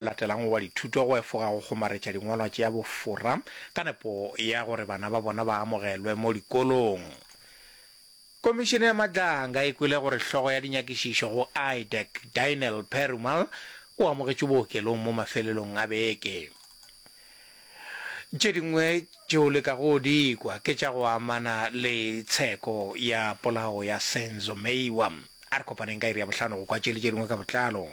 latelago wa dithuto go efoga go kgomaretša dingwalwa tša bofora ka nepo ya gore bana ba bona ba amogelwe mo dikolong. Komišene ya Madlanga e kwele gore hlogo ya dinyakišišo go IDEC, Dynel Perumal, o amogetšwe bookelong mo mafelelong a beke. Tše dingwe tše o lekago go di kwa ke tša go amana le tsheko ya polao ya Senzo Meyiwa. A re kopaneng ka iri ya bohlano go kwa tše le tše dingwe ka botlalo.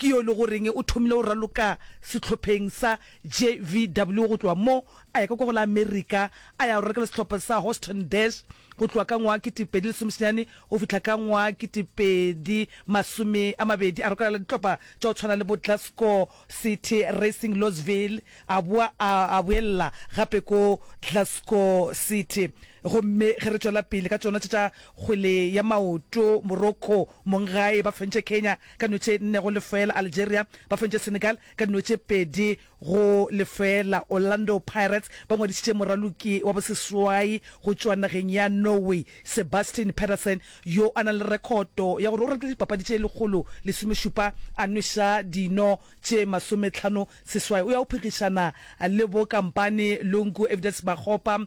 Ke yo e le goreng o thomile go raloka sehlopheng sa JVW go tloga mo a ya ka kwa go la Amerika a ya go raloka le sehlopha sa Houston Dash go tloga ka ngwaga kete pedi lesome senyane go fihla ka ngwaga kete pedi masome a mabedi. A rokela le dihlopha tša go tshwana le bo Glasgow City, Racing Louisville a boa a a boelela gape ko Glasgow City. Gomme ge re tšwela pele ka tšona tše tša kgwele ya maoto, Morocco, Mong gae ba fentše Kenya ka dino tše nne go lefeela, Algeria ba fentše Senegal ka dino tše pedi go lefeela. Orlando Pirates ba ngwadišitše moraloki wa boseswai go tšwa nageng ya Norway, Sebastian Pedersen, yo a nang le rekhoto ya gore o ratile dipapadi tše lekgolo lesomešupa a nweša dino tše masometlhano seswai. O ya go phegišana le bo Kampani Lungu, Evidence Makgopa,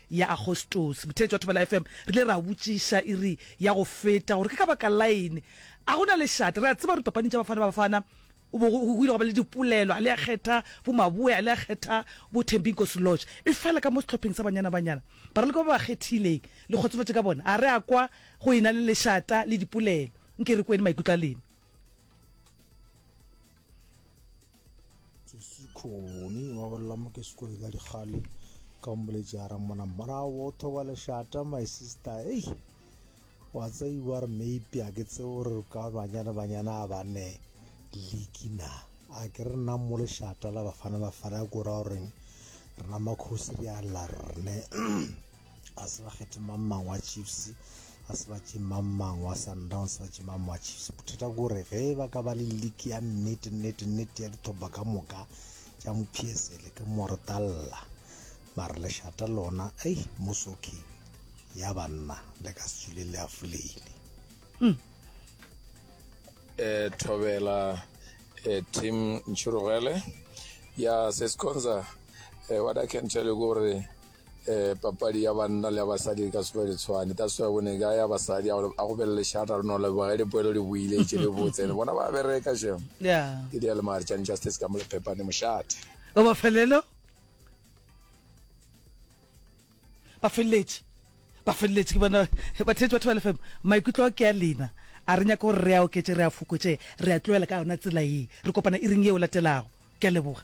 ya Agostose, botheetši wa Thobela FM, re ile ra botšiša iri ya go feta gore ke ka baka lain a go na lešate. Re a tseba gore dipapaning tša Bafana Bafana go bo go ile gwa ba le dipolelo, a le a kgetha bo Maboe, a le a kgetha bo Thembi Nkosi Lorch. Efela ka mo sehlopheng sa Banyana Banyana, baraloki ba ba ba kgethileng le kgotsofatše ka bona, a re a kwa go e na le lešata le dipolelo. Nke re kweni maikutlo a lena. sekhoni wa bolela mo ke sekone ka dikgale ka mmoletše a rang mona morago o thoba lešata my sister ei wa tseiwa re maybe a ke tseo re ka banyana banyana a bane leki na a ke re nna mo lešata la bafana bafana ya kora goreng rena makgosi re a lla rne a se ba kgethe mang mang wa chiefs a se ba tše mang mang wa sundowns ba tše mang wa chiefs bothata ke gore ge ba ka ba le league ya nnete nnete nnete ya dithoba ka moka tša mophiesele ke moretalla mare lešata lona ei mosoki ya banna le ka setswile le afoleile um thobela um tim nchurugele ya sesconza um eh, what i can tell you gore eh papadi ya banna le ya basadi e ka se le tshwane that's why bone ka ya basadi a go belele shata re no leboga le poelo le buile e tšele botse le bona ba bereka shem yeah ke dia le mare tšane justice ka mo le phepane moshate o ba felelo ba feletse ba feletse ke bona ba tletse batho ba lefem maikutlo ke ya lena a re nyaka gore re a oketse re a fokotse re a tloela ka yona tsela e re kopana e reng e o latelago ke a leboga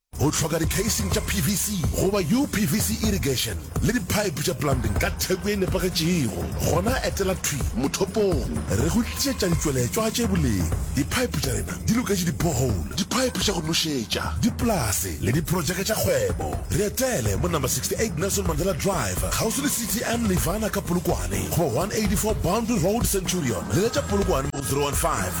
O hloka dikheising tša PVC goba UPVC irrigation le diphaephe tša plumbing ka theko e nepagetšego? Gona etela thwi mothopong re go tlišetša ditšweletšwa tše boleng. Diphaephe tša rena di loketše di-borehole, diphaephe tša go nošetša, dipolase le diprotšeke tša kgwebo. Re etele mo number 68 Nelson Mandela Drive, kgauswi le CTM Nirvana ka Polokwane, goba 184 Boundary Road, Centurion. Leletša Polokwane mo go 015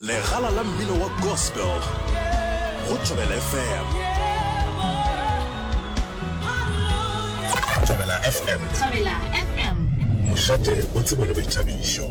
Legala la mmino wa gospel go Thobela FM. Thobela FM. Thobela FM. Mošate o tsebo le boithabišo.